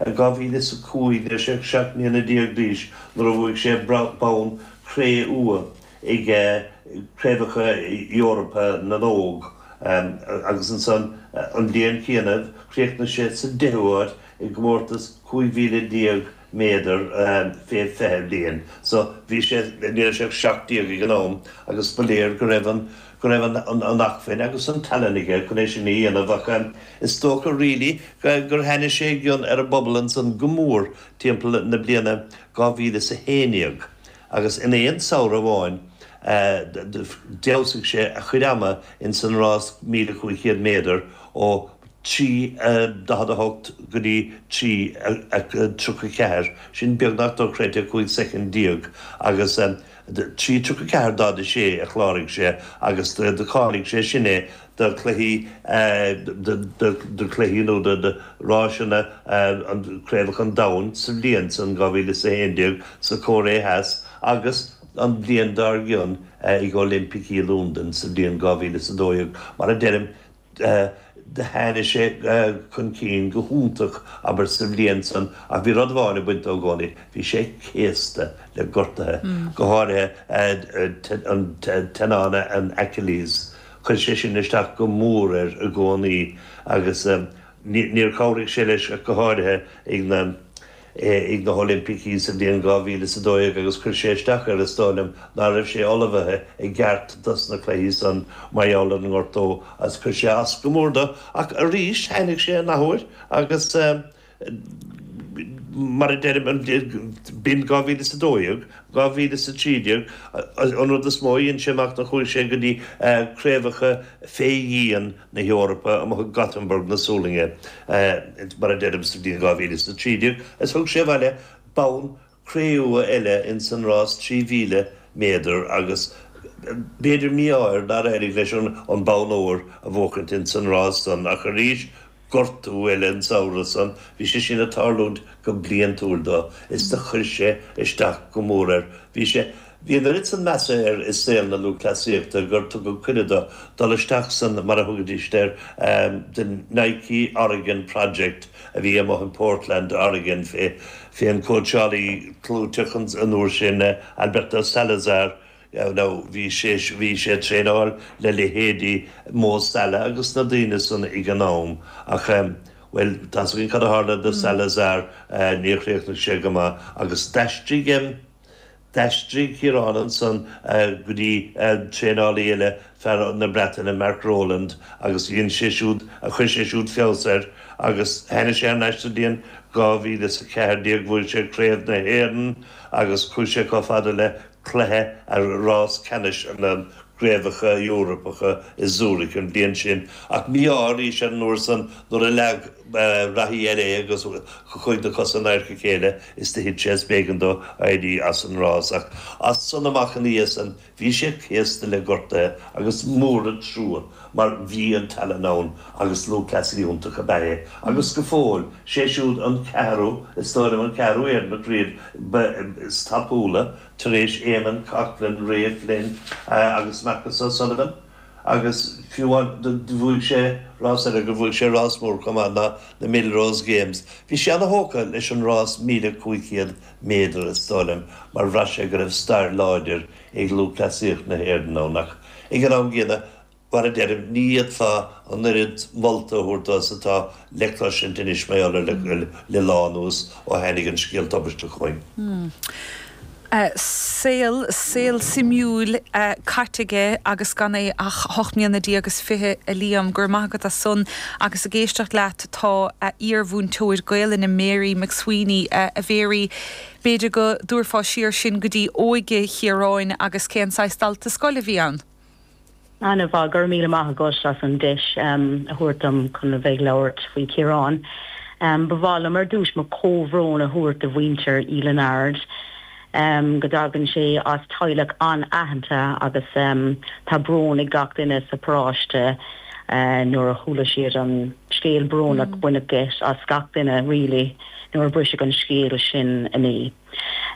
I 2005 bhí sé seacht mbliana déag d'aois nuair a bhuaigh sé bonn cré-umha ag Craobhacha Eorpa na nÓg agus ansan an bhliain chéanna chríochnaigh sé sa deichiú áit i gcomórtas 15,000 méadar fé 20 bliain so bhí sé, ní raibh sé ach seacht déag ag an am agus ba léir go raibh an. go raibh an acfuinn agus an tallann aige chun é sin a dhéanamh ach is dócha really gur tháinig sé i gcion ar an bpobal ansan go mór timpeall na bliana 2011 agus in aon samhradh amháin d'fheabhsaigh sé a chuid ama ins an rás 1500 méadar ó 3:48 go dtí 3:34, sin beagnach dochreidte 15 soicind agus. trí tríocha ceathair daichead a sé a chláraigh sé agus do cháiligh sé sin é do chluichí do chluichí nó do ráiseanna Craobhacha an Domhain sa bhliain san 2011 sa Chóiré Theas agus an bhliain dár gcionn ag Oilimpicí Londain sa bhliain 2012 mar a deirim Tháinigh sé chun cinn go hiontach, abair, sa bhliain san ach bhí rud amháin ag baint dó i gcónaí, bhí sé céasta le gortaithe, go háirithe an teannán, an Achilles. Chuir sé sin isteach go mór air i gcónaí agus níor chabhraigh sé leis ach go háirithe ag na, ag na hOilimpicí sa bhliain 2000 is 12 agus chuir sé isteach air, is dóigh liom ná raibh sé ullmhaithe i gceart dos na cluichí san mar gheall ar an ngortú agus chuir sé as go mór do ach arís tháinig sé an athuair agus mar a deirim an bhliain, b'in 2000 is 12, 2000 is 13 an rud is mó a dhein sé amach ná chuaigh sé go dtí craobhacha fé dhíon na hEorpa amuigh i Gothenburg na Sualainne, mar a deirim, sa bhliain 2013 agus thug sé abhaile bonn cré-umha eile ins an rás 3,000 méadar agus b'fhéidir mí-ádh air nár éirigh leis an bonn óir a bhuachaint ins an rás san ach arís gortú eile an samhradh san, bhí sé sin ag tarlúint go bliantúil do, is do chuir sé isteach go mór air. Bhí sé. Bhí an oiread san measa air i saol na lúthchleasaíochta gur tugadh cuireadh do dul isteach san, mar a thugaidíst air, The Nike Oregon Project a bhí amuigh in Portland, Oregon fé an cóitseálaí clúiteach an uair sin, Alberto Salazar. Now, bhí sé, bhí sé ag traenáil le leithéidí Mo Salah agus na daoine san ag an am ach, bhuel, tá's againn cad a tharla do Salazar, níor chríochnaigh sé go maith agus d'aistrigh, D'aistrigh Ciarán ansan go dtí an traenálaí eile, fear na Breataine, Mark Rowland, agus dhein sé siúd, chuir sé siúd feabhas air agus tháinig sé thar n-ais. Sa bhliain 2014 bhuaigh sé craobh na hÉireann agus chuaigh sé chomh fada le cluiche a rás ceannais na gcraobhacha Eorpacha i Zurich an bhliain sin. Ach mí-ádh arís air an uair san nuair a leag. reathaí eile é agus chuaigh na cosa in adharca a chéile is do thit sé is b'éigin dó éirí as an rás ach as san amach ina dhiaidh san bhí sé céasta le gortaithe agus mór an trua mar bhí an tallann ann agus lúthchleasaí iontach ab ea é agus go fóill is é siúd an ceathrú is dóigh liom an ceathrú Éireannach riamh ba is tapúla tar éis Éamonn Coghlan, Ray Flynn agus Marcus O'Sullivan. Agus fiú bhuaigh sé rás eile do bhuaigh sé rás mór chomh maith ag na Millrose Games. Bhí sé ana-thógtha leis an rás 1,500 méadar is dóigh liom mar bhraith sé go raibh stair láidir ag lúthchleasaíocht na hÉireann ann ach ag an am gcéanna, mar a deirim, ní fhéadfá an oiread molta a thabhairt dó is atá le cloisint anois mar gheall air le lá anuas ó tháinig an scéal tubaisteach chugainn. Saol, saol suimiúil caite aige agus gan é ach a hocht mbliana déag is fiche a Liam. Go raibh maith agat as san. Agus ag éisteacht leat tá a iar-mhúinteoir Gaelainne Mary McSweeney, a Mhary, b'fhéidir go dtabharfá siar sinn go dtí óige Chiaráin agus cén saghas dalta scoile a bhí ann? Ana-mhaith. Go raibh míle maith agat as an deis a thabhairt dom chun a bheith ag labhairt faoi Chiarán. Ba mhaith liom ar dtúis mo chomhbhrón a thabhairt do mhuintir Uí Lionáird. Go dtagann sé as teaghlach an-aitheanta agus tá brón ag gach duine sa bparáiste nuair a chuala siad an scéal brónach. Baineadh geit as gach duine really nuair a briseadh an scéal sin inné.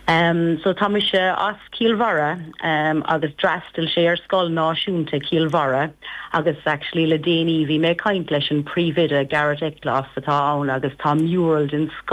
Em so tá mise as Cill Bharra em agus d'fhreastail sé ar scoil náisiúnta Chill Bharra agus actually le déanaí bhí mé ag caint leis an príomhoide Garret Eklof atá ann agus tá mural den sco